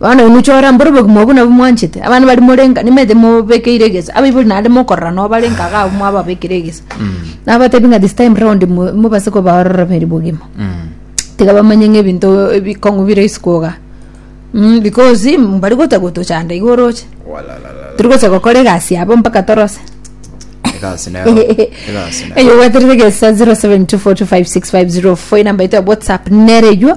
Bono inwe chora mboro obogima obwo nabwo mwanchete abana bari morenga nimaete mobekeire egesa abaibori naende mokorora nabo barenga iga abwo mwababekire egesa nabatebi ng'a this time round mo- mobase kobaorora beri bogima tiga bamanye ng'a ebinto ebikong'u bire isiko iga Mm, because mbari gocha gotochanda iga oroche Walalala. tiri gocha gokora egasi yabo mpaka torose Egasi nero. Egasi nero. eyo gweterete gesa 0724256504 enamba yaito ya whatsapp nereywo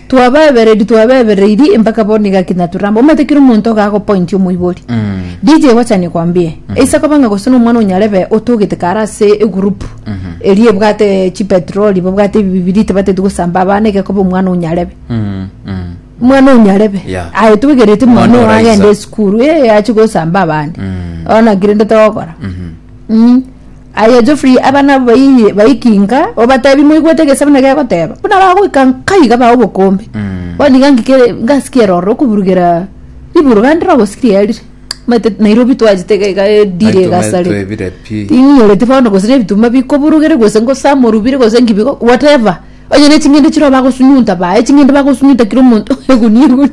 Twabaebereiri twabebereiri mpaka bono igaki naturamba omanyete kera omonto iga agopointi omoibori DJ gochania kwambie eisa koba ng'a gose nomwana onyarebe otogete kare ase egurupu eria ebwate chipetroli babwate ebibiriti bateti gosamba abana iga koba omwana onyarebe omwana onyarebe Yeah. aye toigereti Omwana mwana oyo oraisa. agende esukuru ee achi gosamba abande ona kirende togokora Mm. Aye Geoffrey abana abo bayi- bayikinka obatebi moigwete egesebo na gegoteba buna bagoika nkai gabae obokombe bono iga ngikere ngasiki eroro okuburugera riburu gande rogosiki rierire maete Nairobi twachete iga iga edire Naitwe maete egasare twebire pi. ting'orete bono gose nebitumba bikoburugere gose ngosama orubire gose nki bigo whatever onye ne ching'ende chire bagosunyunta bae ching'ende bagosunyunta kira omonto egunia egunia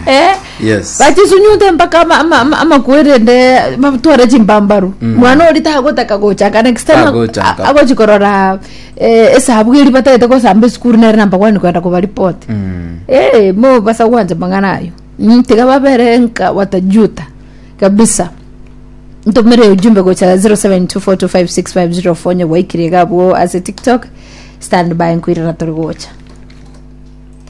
Eh, Yes. bachisunyute mpaka ama- ama- ama- amakwerende batware chimbambaru mwana ori tagotaka gochaka next time Tagochaka. a- agochi korora eh, esabu eri batagete gosamba esukuru nere namba gwani kwenda kobaripoti Mm. Eh, mo basa gwanja mang'ana ayo Mm, tiga babere nka watajuta kabisa ntumire ujumbe gocha 0724256504 nyogwaikire gabwo ase tiktok stand by nkwirana turi gocha